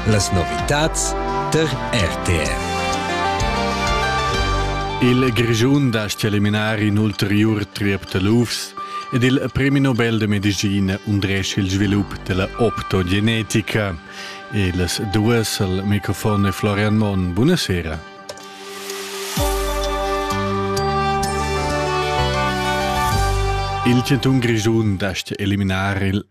Las novitads tar RTR. Il Grischun dast eliminar in ulteriur triep da lufs ed il premi Nobel de medicina undresch il svilup della optogenetica. Ils duas al microfon e Florian Mon. Buonasera. Il Centun Grischun dast eliminar il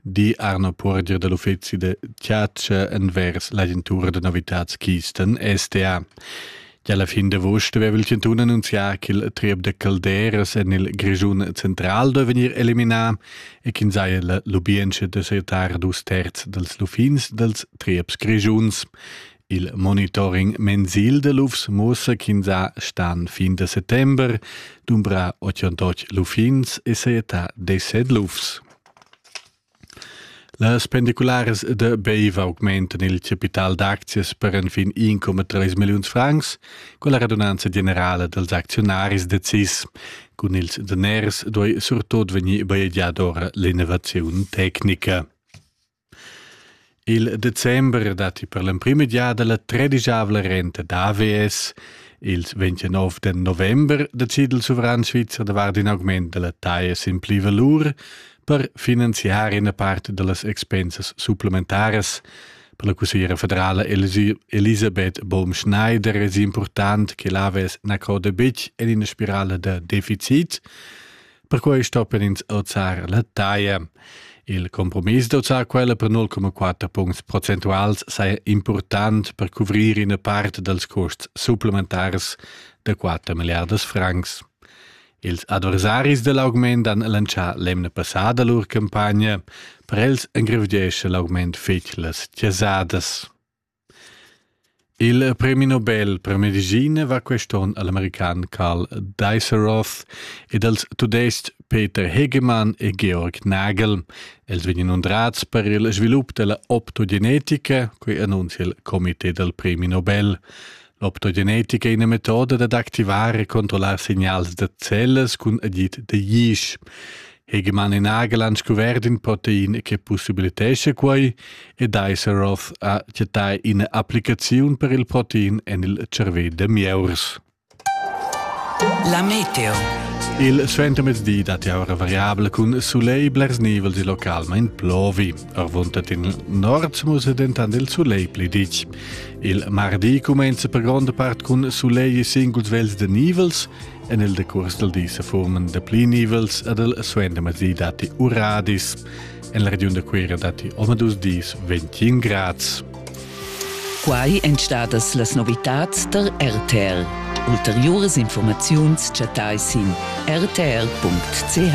di Arno Puorger da l'uffezi da chatscha envers l'agentura da novitads Kisten STA. Gia alla fin d'agost aveva il Cantun annunzià che il triep da calderas en il Grischun central deve vegnir eliminà e ch'in saja la lubientscha da setar dus terz dals lufins dals trieps grischuns. Il monitoring mensil da lufs muossa ch'ins ha stan fin da settember dumbra 88 lufins e seeta 17 lufs. Las pendicularas da Beiva augmentan il capital d'aczias per enfin 1,3 milliuns francs, quella radunanza generala dals acziunaris decis. Cun ils daners duai surtut vegnir bajegiada ora l'innovaziun tecnica. Il december datti per l'emprima giada la tredischavla renta d'AVS. Ils 29 da november decida il suveran svizzer davart in augment da la taja sin pli valur per finanziar ina part da las expensas supplementaras. Per la cussiera federala Elisabeth Baum-Schneider è important che l'AVS na croda betg en ina spirale da deficit. Perquai stoppan ins auzar la taglia. Il compromiss d'auzar quella per 0,4 puncts procentuals saja important per cuvrir ina part dals custs supplementars da 4 milliardas francs. Ils adversaris da l'augment han lancià l'emna passada lur campagna. Per els engrevgiescha l'augment fetg las chasadas. Il premi Nobel per medicina va quest onn al american Karl Diceroth ed als tudestg Peter Hegemann e Georg Nagel. Els vegnan undrats per il svilup della optogenetica, quei annunzia il comité del premi Nobel. L'optogenetica è ina metoda dad activar e controllar signals da cellas cun agid da yeast. Hegemann in agel han scuvert in protein che possibilitescha quai ed Iseroth ha chattà ina applicaziun per il protein en il cervè da mieurs. La meteo. Il suentermezdi dat jau ora variabla cun sulegl blers nivels il local, ma in plovi. Arvuntat in nord musa dentant il sulegl pli ditg. Il mardi cumenza per gronda part cun sulegl e singuls vels da nivels. En il decurs dal di se forman da pli nivels ed il suendermezdi datti uradis. En la regiun da Cuira datti omadus dis 21 grads. Quai èn stadas las novitads tar RTL. Ulteriuras informaziuns chattai sin rtl.ch.